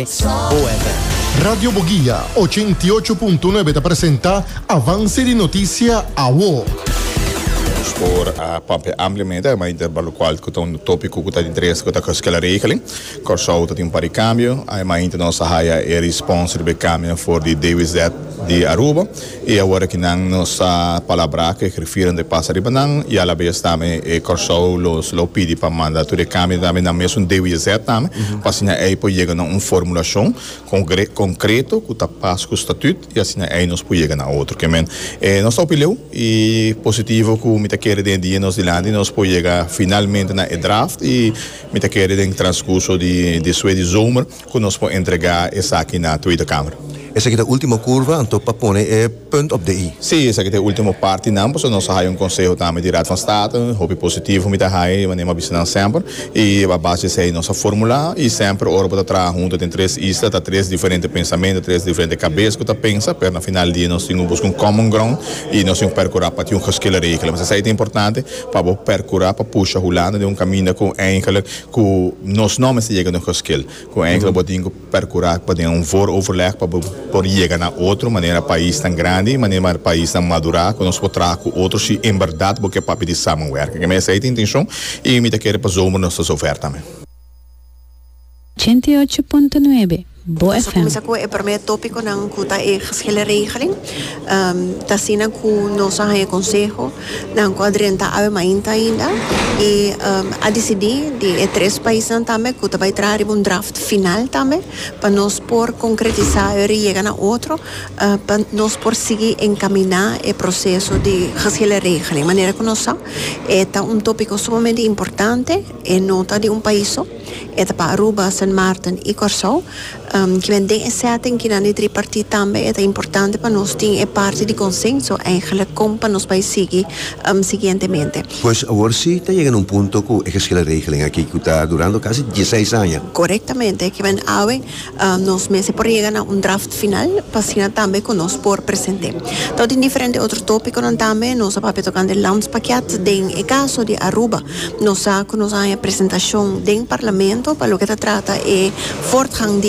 Boeber. Radio Boguia ochenta i ocho punto nuebe ta presenta Avance di Noticia Awo. Nos por a papia ampliamente mas inter balucual cu ta un topico cu ta di interes cu ta Kosciusko la regeling. Corsou ta tin un par di cambio. Hay mainta nos a haya e respons riba e cambio na for di DWZ di Aruba. I awor aki nan nos a palabrá ku e grifieron de pasa riba nan i alabes tambe e Kòrsou los lo pidi pa manda tur e kambio tambe nan mesun DWZ tambe pa asina ei por yega na un formulashon kongre konkreto ku ta pas ku statüt i asina ei nos por yega na otro ke men e nos ta hopi leu i positivo ku mi ta kere den e dia nos dilanti nos por yega finalmente na e draft i mi ta kere den transkurso di despues di zomer. Cu nos por entrega esaki na Tweede Kamer. Esaki ta ultimo curva, anto pa pone e punt op de i. Si, esaki ta e ultimo partinan, pasobra nos a hayo un conseho tambe di Raad van State, hopi positivo mi ta hayo, di manera mi a bisa nan semper, y a base di esey nos a formula, y semper ora bo ta traha hunto den tres isla, ta tres diferente pensamento, tres diferente cabes cu ta pensa, pero na final di dia nos tin cu busca un common ground, y nos tin cu percura pa tin un geskillenregeling, pasobra esey ta importante, pa bo percura pa pusha Hulanda den un caminda cu eindelijk. Ku nos no mester yega na un goskil ku e enkele bo tin ku perkurá pa den un vooroverleg pa bo por yega na otro manera paisnan grandi, manera paisnan madurá ku nos por traha ku otro si en bèrdat bo ke papia di samenwerking. Kemey esei ta intenshon i mi ta kere pa zomer nos ta zover tambe. Ochenta i ocho punto nuebe, Bo FM. Ta cuminsa cu e prome topiconan cu ta e gehele regeling. Ta asina cu nos a haya conseho nan cu a drenta awe mainta ainda y a dicidi di e tres paisnan tambe cu ta bay traha riba un draft final tambe pa nos por concretisa y ora e yega na otro pa nos por sigui encamina e proceso di gehele regeling. Manera cu nos sa e ta un topico sumamente importante, e no ta di un paiso. E ta pa Aruba, Sint Maarten i Kòrsou. Kimen den e sètting kinan di tripartit tambe e ta importante pa nos tin e parti di konsenso eigenlijk kon pa nos bai sigui siguientemente. Pues awor si ta yega na un punto ku e geskillen regelen aki ku ta durando kasi dieseis aña. Korektamente kimen awe. Nos mester por yega na un draft final pa asina tambe cu nos por present'e. Ta tin diferente otro topiconan tambe. Nos a papia tocante landspakket. Den e caso di Aruba nos sa cu nos a haña presentacion den Parlamento pa loke ta trata e voortgang di.